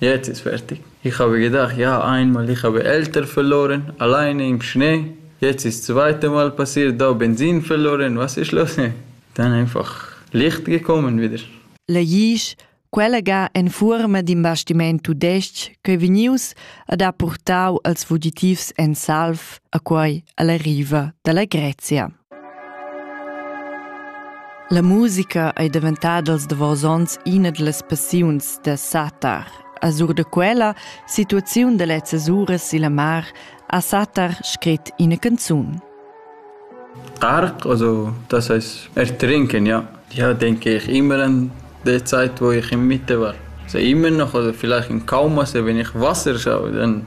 Jetzt ist fertig. Ich habe gedacht, ja, einmal, ich habe Eltern verloren, alleine im Schnee. Jetzt ist das zweite Mal passiert, da Benzin verloren, was ist los? Dann einfach Licht gekommen wieder. Legisch, quella ga en fuorma d'in bastiment tudestg ch'ei vegnius ad ha purtau als fugitivs en salv a quei alla riva dalla Grezia. La musica ei daventada als davos onns ina dallas passiuns da Satar. A sur da quella situaziun da lezzas uras silla mar ha Satar scrit ina canzun. Tark, also das heißt Ertrinken, ja. Ja, denke ich immer an die Zeit, wo ich in Mitte war. Also immer noch, oder vielleicht in Kauma, also wenn ich Wasser schaue, dann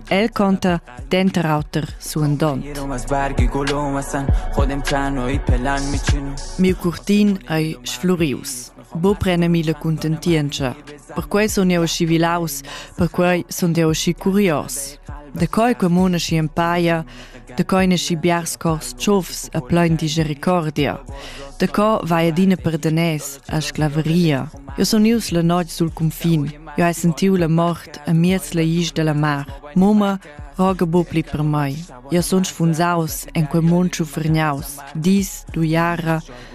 El conta denter auter suandont. Miu curtin ei sflurius. Bo prenemi la contentientscha. Perquei sun jeu aschi vilaus, perquei sun jeu aschi curios. Da coi comuna schi empaia, Da coi nasci biars cors tschofs e plein di jericordia. Da co vai adina per danès a sclaveria. Jo sun ius la notg sul cunfin. Jo hai sentiu la mort a miez la isch della mar. Mumma roga bupli per mai. Jo sun sfunsaus en quei mund schufergnaus. Dis, du jara,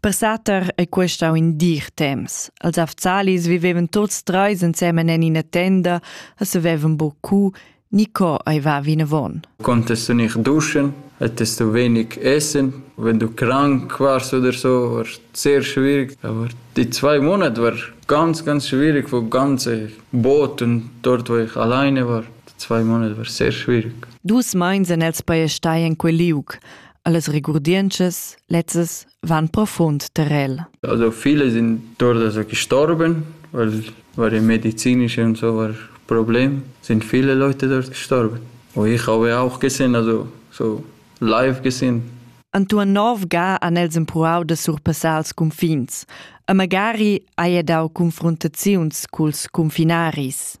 Per Sater è questo in dir temps. Els afzalis vivevan tuts treis ensemen en ina tenda e savevan beaucoup ni co ei va vinavon. Contest du nicht duschen? Hättest du wenig Essen? Wenn du krank warst oder so, war es sehr schwierig. Aber die zwei Monate waren ganz, ganz schwierig, wo ganze Boot und dort, wo ich alleine war. Die zwei Monate waren sehr schwierig. Dus meins en els paiestai en quel liug. Allas regurdientschas lezzas van profund terrel. Also viele sind dort also gestorben, weil, weil im medizinischen und so war Problem, sind viele Leute dort gestorben. Und ich habe auch gesehen, also so live gesehen. Antoine Nov ga an els empruau da surpassar els confins. A magari haja dau confrontaziuns culs confinaris.